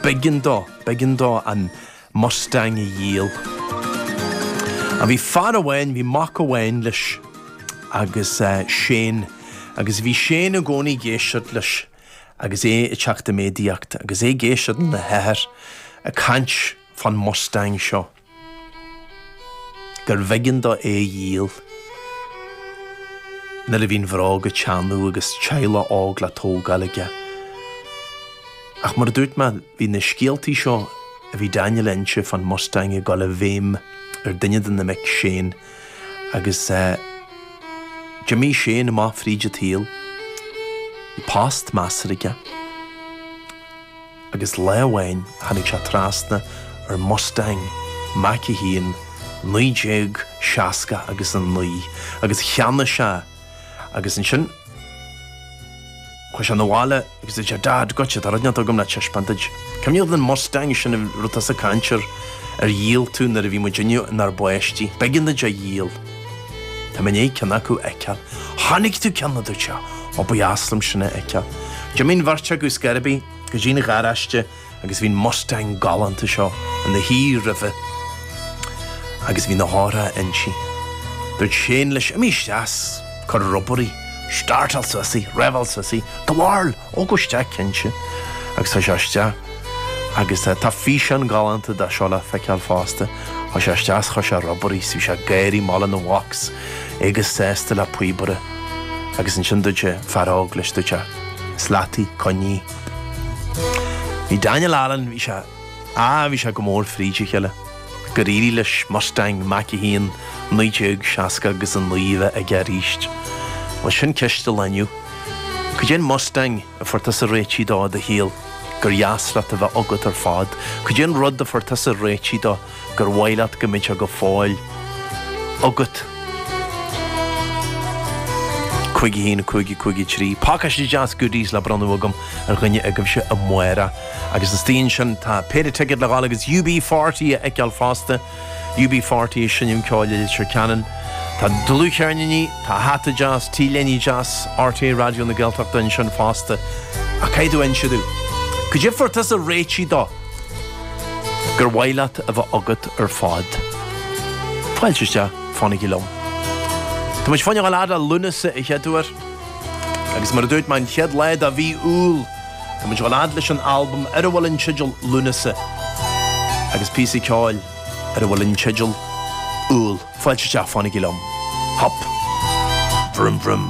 B'eigean dó, b'eigean dó an mustang a dhíol. Á bhí fear amháin, bhí mac amháin leis agus eh, Séan, agus bhí Séan i gcónaí ag éisteacht leis agus é ag teacht i méadaíocht agus é ag éisteacht lena athair ag caint fán mustang seo. gurbh éigean dó é a dhíol. Nuair a bhí an bhróg ag teannadh agus teaghlach óg le tógáil aige. Ach mar a dúirt mé, bhí na scéaltaí seo a bhí Daniel ag inse fán Mustang ag dul i bhfeidhm ar duine de na mic Shane agus d'imigh Shane amach fríd an tsaol. Bhí post measartha aige. agus lá amháin tháinig sé trasna ar Mustang Mach 1 1969 agus cheannaigh sé agus ansin chuaidh sé 'na bhaile agus dúirt sé Dad goitse tá rud inteacht agam le taispeáint duit. Cuimhneach leat an Mustang sin a raibh tusa ag caint air ar dhíol tú nuair a bhí muidinne inár bpáistí. B'éigean duit a dhíol. Tá mé i ndiaidh ceann acu a fheiceáil. Chonaic tú ceann? a dúirt sé. Ó, ba dheas liom sin a fheiceáil. D'imigh an bheirt acu scor ar bith go dtí an garáiste agus bhí an mustang galánta seo ina shuí roimhe agus bhí na heochracha inti. Dúirt Séan leis, Imigh isteach 's cuir ag obair í. Startáil suas í! Reveáil suas í! Gabháil! Ó gabh isteach cinnte agus chuaigh sé isteach agus tá físeán galánta de seo le feiceáil fosta. Chuaigh sé isteach is chuir sé ag obair í is bhí sé ag gáirí lena mhac is é chomh sásta le píobaire agus ansin dúirt an fear óg leis dúirt sé is leat í coinnigh í. Bhí Daniel Allen bhí sé á bhí sé go mór fríd a chéile. Gur éirigh leis Mustang Mach 1 1960 agus 9 a bheith aige aríst. Bhuel sin ceist an lae inniu. Cad é an Mustang a fuair tusa réitigh de i do shaol gur dheas leat a bheith agat ar fad. Cad é an rud a fuair tusa réitigh de gur mhaith leat go mbeadh sé go fóill agat. 51 5 53. Pácáiste deas goodies le bronnadh agam ar dhuine agaibhse amárach. Agus istigh ansin tá péire ticéad le gabháil agus UB40 a fheiceáil fosta. UB40 ag seinm ceoil i Leitir Ceanainn. Tá dlúthcheirníní, tá hata deas, t-léiní deas, RTÉ Raidió na Gaeltachta ansin fosta. Ach caithfidh tú inse domh cad é a fuair tusa réitigh de gur mhaith leat a bheith agat ar fad. Fáilte isteach, fanaigí liom. Tá muidinne ag gabháil a fhad le Lúnasa an chéad uair. Agus mar a dúirt mé an chéad lá de mhí Iúil. Tá muid ag gabháil a fhad leis an albam ar a bhfuil an teideal Lúnasa agus píosa ceoil ar a bhfuil an teideal Iúil fáilte isteach fanaigí liom. Hop! Vroom vroom.